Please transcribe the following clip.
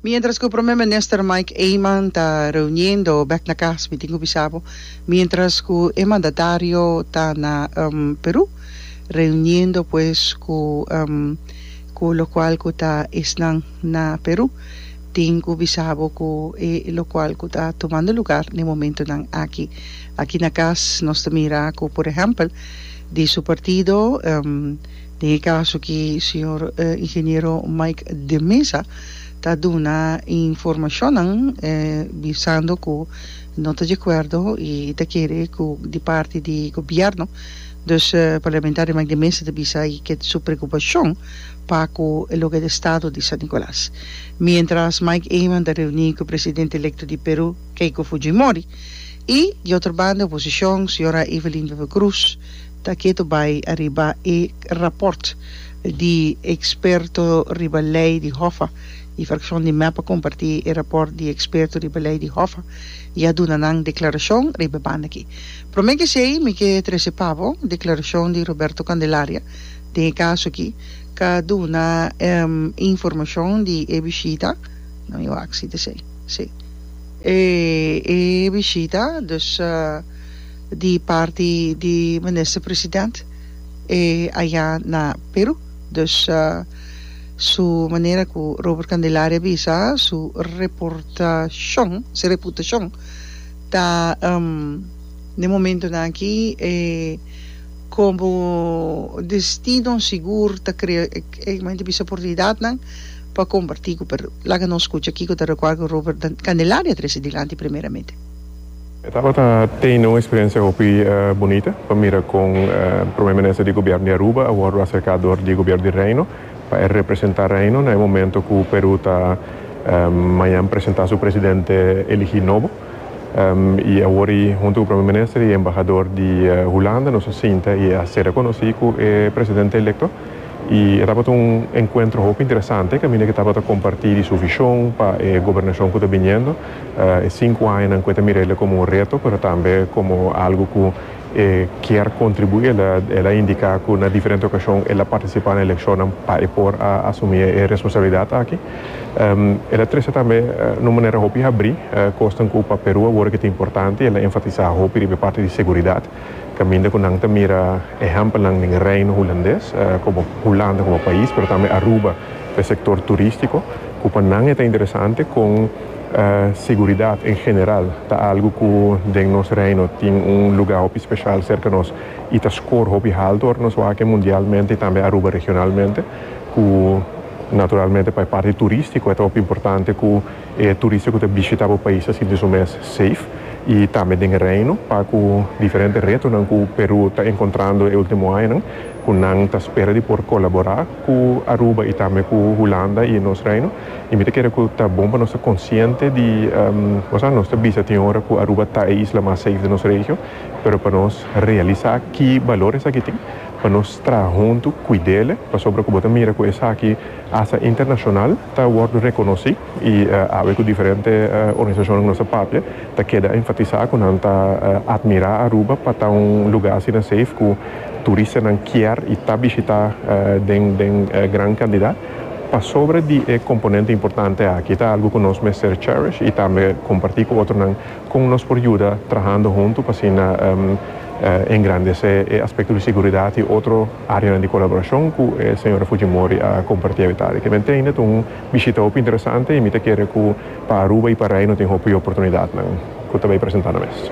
Mientras cu Prome Minister Mike Eman ta reuniendo bek na cas, mi tin cu bisa bo, mientras cu e mandatario ta na Peru reuniendo pues cu cu locual cu ta esnan na Peru, tin cu bisa bo cu e locual cu ta tumando lugar na e momentonan aki. Aki na cas nos ta mira cu por ehempel di su partido. Den e kaso ki señor Ingeniero Mike de Meza ta duna e informashonnan bisando ku no ta di akuerdo i e ta kere ku di parti di gobièrnu. Dus Parlamentario Mike de Meza ta bisa i ke su preokupashon pa ku loke di Estado di San Nicolas. Miéntras Mike Eman ta reuní ku Presidente Elekto di Peru Keiko Fujimori i di otro banda oposishon señora Evelyn Wever-Croes Ta ketu bai ariba e raport di eksperto riba lei di Hoffa. E frakshon di mep a kompartí e raport di eksperto riba lei di Hoffa i a duna nan deklarashon riba e banda akí. Promé ke esei mi ke trese pa bo deklarashon di Roberto Candelaria den e kaso akí. Ka duna informashon di e bishita, no mi wak si ta esei, sí, e bishita, dus. di parti di Minister President e aya na Peru. Dus su manera cu Robert Candelaria bisa su reportacion, su reputacion ta den momentonan aki e como destino sigur ta crea e como ente bisa oportunidadnan pa comparti cu Peru. Laga nos scucha kico ta recuerdo cu Robert Candelaria a trece dilanti primeramente. E tabata tene un experiencia hopi bunita pa mira con Prome Minister di Gobierno di Aruba a wordo acerca door di Gobierno di Reino pa e representa Reino na e momento cu Peru ta mañan presenta su Presidente eligi nobo y awor y hunto cu Prome Minister y Embahadoor di Hulanda nos a sinta y a ser reconoci cu e Presidente Electo y e tabata un encuentro hopi interesante caminda cu e tabata comparti di su vision pa e Gobernacion cu ta biniendo. e sinku añanan ku e ta mira el komo un reto pero tambe komo algu ku e kier kontribuí. El a indiká ku na diferente okashon el a partisipá na elekshonnan pa e por a asumí e responsabilidat aki. El a trese tambe na un manera hopi habrí kosnan ku pa Perú awor a keda importante i el a enfatisá hopi riba e parti di seguridat. Caminda cu nan ta mira ehempelnan den Reino Hulandes, como Hulanda como pais, pero tambe Aruba p'e sector turistico, cu pa nan e ta interesante con seguridad en general ta algo cu den nos Reino tin un lugar hopi special cerca nos y ta score hopi halto ora nos wak e mundialmente y tambe Aruba regionalmente, cu naturalmente pa e parti turistico e ta hopi importante cu. E turista ku ta bishitá bo pais ta sinti su mes seif i tambe den e Reino pa ku diferente retonan ku Perú ta enkontrando e último añanan ku nan ta spera di por kolaborá ku Aruba i tambe ku Hulanda i nos Reino i mi ta kere ku ta bon pa nos ta konsiente di osea nos ta bisa tin ora ku Aruba ta e isla mas seif di nos regio pero pa nos realisá ki balor esaki tin pa nos traha huntu kuidele pasobra ku bo ta mira ku esaki asta internashonal ta wòrdu rekonosí i awe ku diferente organisashonnan ku nos ta papia ta keda enfatisá ku nan ta atmirá Aruba pa ta un lugá asina seif ku turistanan kier i ta bishitá den gran kantidad pasobra di e komponente importante aki. Ta algu ku nos mester cherish i tambe kompartí ku otronan. Con nos por yuda trahando hunto pa asina engrandece e aspecto di seguridad y otro areanan di colaboracion cu e señora Fujimori a comparti avetadi. Kiben teinda ta un bishita hopi interesante y mi ta kere cu pa Aruba y pa Reino tin hopi oportunidadnan cu ta bay presenta na mes.